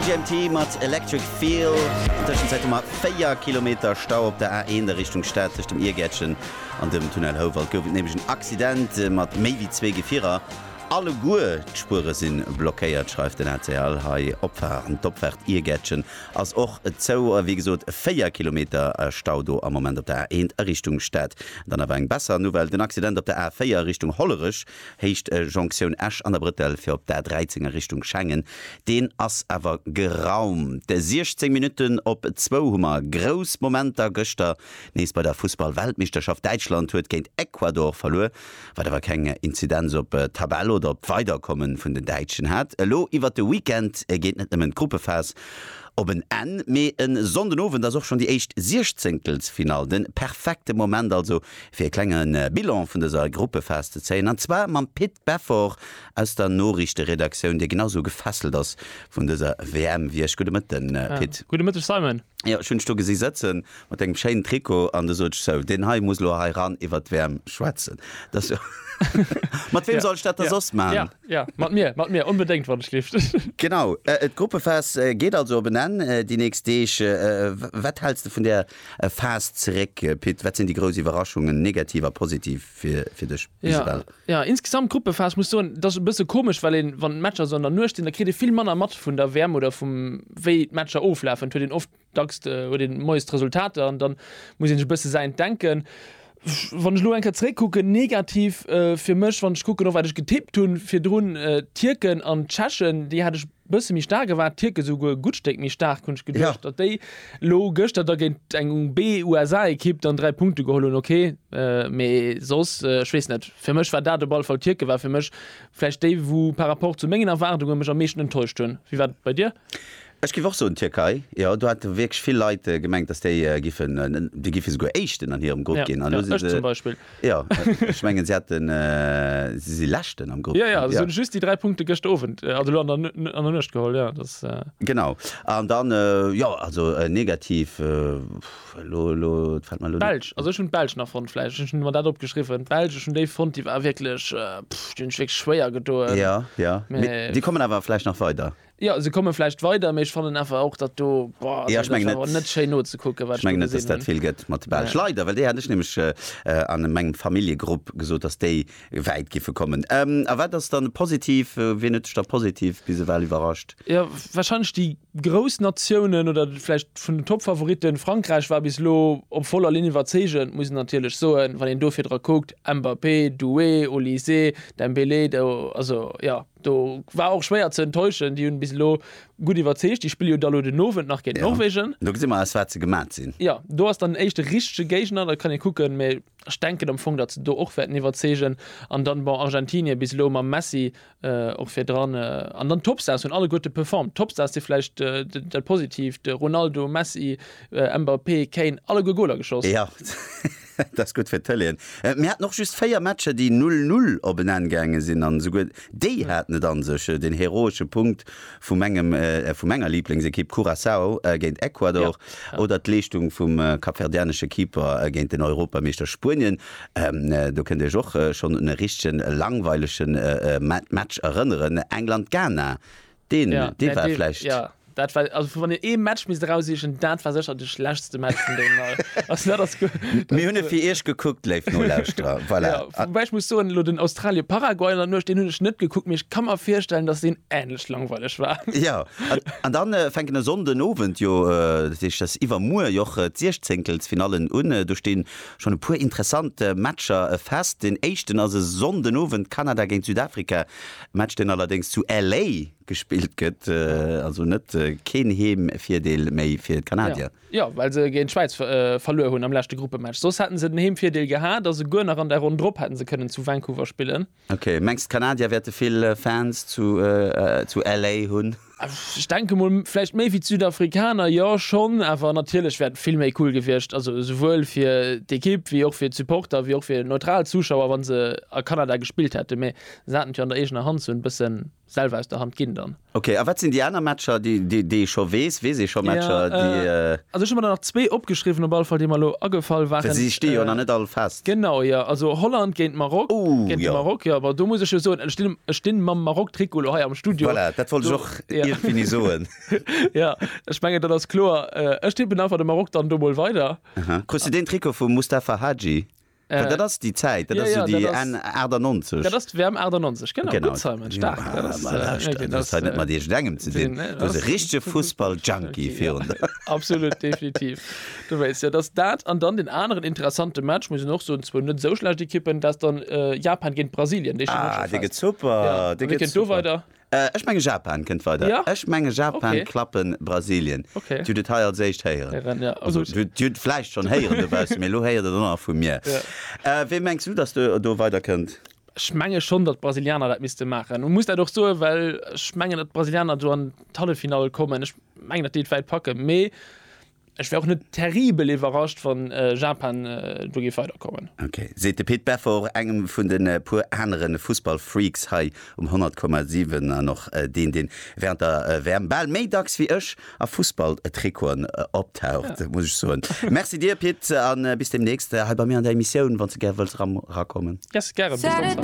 MGMT mat Electric Feel. An Tëschenzäit hu mer 4 Kilometer Stau op der A1 a Richtung Stad. Tëscht dem Iergäertchen an dem Tunnel Houwald gouf et nämlech en Accident mat méi wéi zwee Gefierer. Alleguer d'Spuere si blockéiert, schreift den rtl hei. Opfaart an d'Opfaart Iergäertchen ass och zou. Wéi gesot 4 Kilometer Stau do am Moment op der A1 a Richtung Stad. Dann awer eng besser Nouvelle, den Accident op der A4 a Richtung Hollerech Héicht Jonktioun Esch an der Brëttel fir op d'A 13 a Richtung Schengen, deen ass awer geraumt. 16 Minutten op zwou hu mer grouss Momenter gëschter nees bei der Fussball-Weltmeeschterschaft. Däitschland huet géint Ecuador verluer, wat awer keng Inzidenz op d'Tabell oder op d'Weiderkomme vun den Däitschen hat. Elo iwwert de Weekend geet net nëmmen d'Gruppephas op en Enn, mee e Sonndenowend ass och schonn déi éischt Siechzéngtelsfinall. Den perfekte Moment also fir e klenge Bilan vun dëser Gruppefest ze zéien, an zwar mam Pit Beffort aus der Noriichteredaktioun, dee genau esou gefesselt ass vun dëser WM wéi ech. Gudde Mëtten, Pit. Gudde Mëtteg, Simon. Jo, ech hunn dech do gesi sëtze mat dengem schéinen Trikot an du sot ech, sou, deen hei muss elo hei ran iwwert d'WM schwätzen. Mat wem soll ech dat da soss maachen? Ja, ja, mat mir, mat mir, onbedéngt, wann ech lift. Genau, d'Gruppefest geet also op en Enn déi nächst Deeg. Wat häls de vun där E Phase zeréck, Pit, wat sinn déi grouss Iwwerraschungen, negativ a positiv, fir dech, Isabelle? Jo, insgesamt d'Gruppephase, ech muss soen, dat ass e bësse komesch, well een, wann d'Matcher esou an der Nuecht sinn, da kritt ee vill manner mat vun der WM oder vum, wéi d'Matcher oflafen. Et huet een oft, dacks huet een moies d'Resultater an dann muss ee sech e bësse säint denken. Wann ech elo eng Kéier zeréckkucken, negativ fir mech, wann ech kucken, och wat ech getippt hunn virdrun, d'Tierken an d'Tschechen, déi hat ech, Bësse méi staark, e war Tierke souguer e gutt Stéck méi staark, hunn ech geduecht, datt déi elo gëschter da géint eng B-USA-Ekipp dann dräi Punkte geholl hunn, ok. Mee soss, ech weess net, fir mech war dat op alle Fall, Tierke war fir mech vläicht déi, wou par rapport zu mengen Erwaardunge mech am meeschten enttäuscht hunn. Wéi war et bei dir? Ech géif och soen Tierkei, jo. Do hate wierklech vill Leit gemengt, datt déi giffen, déi giffe souguer Éischten an hirem Grupp ginn. An elo si se Jo, ech mengen se haten, si si Leschten am Grupp. Jo, jo, se hunn just déi 3 Punkte gëschter Owend, also elo an der an der Nuecht geholl, jo, dass. Genau. An dann, jo, also negativ, elo, elo fält mer elo. D'Belsch, also ech hunn d'Belsch nach fonnt, vläicht, ech hunn mer dat opgeschriwwen, d'Belsch, ech hunn déi fonnt, déi war wierklech, pff, déi hunn sech wierklech schwéier gedoen. Jo, jo, mee déi kommen awer vläicht nach weider. Jo, se komme vläicht weider, mee ech fannen awer och dat do, boah, also dat war awer net schéin nozekucken, wat ech do gesinn hunn. Ech menge net, dass dat vill gëtt mat de Belsch. Leider, well déi hat ech nämlech a mengem Familljegrupp gesot, dass déi wäit giffe kommen. A wat ass dann positiv, wien huet dech da positiv bis ewell iwwerrascht? Jo, warscheinlech déi grouss Natiounen oder vläicht vun den Top-Favoritten. Frankräich war bis elo op voller Linn iwwerzeegend, muss een natierlech soen, wann een do virdra kuckt, Mbappé, Doué, Olysée, Dembélé, do, also, jo, Do war och schwéier ze enttäuschen, déi hunn bis elo gutt iwwerzeegt. Déi spille jo da lo den Owend nach géint Norwegen. Do gesi mer aus wat se gemat sinn. Jo, do ass dann den éischte richtege Géigner, da kann ee kucken, mä ech denken am Fong, datt se do och wäerten iwwerzeegen. An dann, bon, Argentinien bis elo mam Messi och virdran. An dann d'Topstars hunn alleguerte performt. D'Topstars si vläicht dat Positiivt, Ronaldo, Messi, Mbappé, Kane, alleguer Goler geschoss. Jo. Dat ass gutt fir d'Tëleen. Mir haten och just 4 Matcher, déi 0, 0 op en Enn gaange sinn an esouguer déi haten et an sech. Den heroesche Punkt vu mengem, vu menger Liblingsekipp Curaçao géint Ecuador oder d'Leeschtung vum kapverdianesche Keeper géint den Europameeschter Spuenien, do kënnt Dir Iech och schonn un e richtegen langweilegen Match erënneren, England-Ghana. Deen, Ja, dee mä war dee, schlecht. ja, dat war, also vu wann een ee Match misst erausiechen, dat war sécher de schlechtste Match vun deenen all. Also dat ass guer, Mir hunn e fir Iech gekuckt, léif Nolauschterer. Voilà. Ja, A- woubäi ech muss soen, elo den Australie-Paraguay an der Nuecht, deen hunn ech net gekuckt, mee ech ka mer virstellen, datt deen änlech langweileg war. Ja, an, an dann äh, fänken e Sonnden Owend jo, äh, dat heescht, dass iwwermuer jo och äh, d'Siechzénkelsfinallen un. Äh, do stinn schonn e puer interessant äh, Matcher äh, fest. Deen éischten ass e Sonnden Owend, Kanada géint Südafrika. Match deen allerdéngs zu LA gespillt gëtt, also net keen Heemvirdeel méi fir d'Kanadier. Jo, well se géint d'Schwäiz verluer hunn am leschte Gruppematch. Soss hätten se den Heemvirdeel gehat a souguer nach an der Ronn drop hätten se kënnen zu Vancouver spillen. Ok, mengs d'Kanadier wäerte vill Fans zu LA hunn? Ech denke mol vläicht méi wéi d'Südafrikaner, jo schonn, awer natierlech wär et vill méi cool gewiescht, also esouwuel fir d'Ekipp wéi och fir d'Supporter wéi och fir neutral Zuschauer, wa se a Kanada gespillt hätten, mee se haten et jo an der eegener Hand, se hunn et e bësse selwer aus der Hand ginn dann. Ok, a wat sinn déi aner Matcher, déi ee scho weess? Weess ee scho Matcher, déi. Also ech hu mer der nach zwee opgeschriwwen, op alle Fall, déi mer elo agefall waren. Well se stinn jo nach net all fest. Genau jo, also Holland géint Maroc, géint de Maroc jo, ma do muss ech jo soen, ech stinn, ech stinn mam Maroc-Trikot elo hei am Studio. Voilà, dat wollt ech och ierfgeni soen. Jo, ech mengen, dat ass kloer. Ech tippen einfach de Maroc dann do mol weider. Aha, krus de deen Trikot vum Mustafa Hadji? Well dat ass déi Zäit, dat ass jo déi Enn 98. Dat ass d'WM 98, genau. Gutt, Simon, staark. Jo, ma lauscht, dat hues hei net mat iergendengem ze dinn, du bass e richtege Fussball-Junkie virun der. Absolut, definitiv. Du wéisst jo, dass dat an dann deen aneren interessante Match, muss een och soen, zwou net esou schlecht Ekippen, dat ass dann Japan géint Brasilien, dee steet och scho fest. Ja, a wie kënnt do weider? Ech menge Japan kënnt weider. Ja? Ech menge Japan Okay. klappe Brasilien. Okay. Dir hutt et hei als éischt héieren. Héieren, ja. Also Gutt. Dir hutt et vläicht schonn héieren dobaussen, mee elo héiert et och nach vu mir. Ja. Wee mengs du, dass do, do weider kënnt? Ech menge schonn, datt d'Brasilianer dat misste maachen. U muss dat och soen, well ech mengen, datt d'Brasilianer do an d'Halleffinall kommen. Ech mengen, datt déi et wäit packen, mee Ech wär och net terribel iwwerrascht, wann Japan do géif weiderkommen. Ok, seet de Pit Beffort, engem vun de puer anere Fussballfreaks hei um 100,7 an och deen, dee wärend der WM bal méi dacks wéi ech a Fussballtrikoten optaucht, muss ech soen. Merci dir, Pit, a bis deemnächst hei bei mir an der Emissioun, wann s de gär wëlls erakommen. Yes, gären. Bis dann.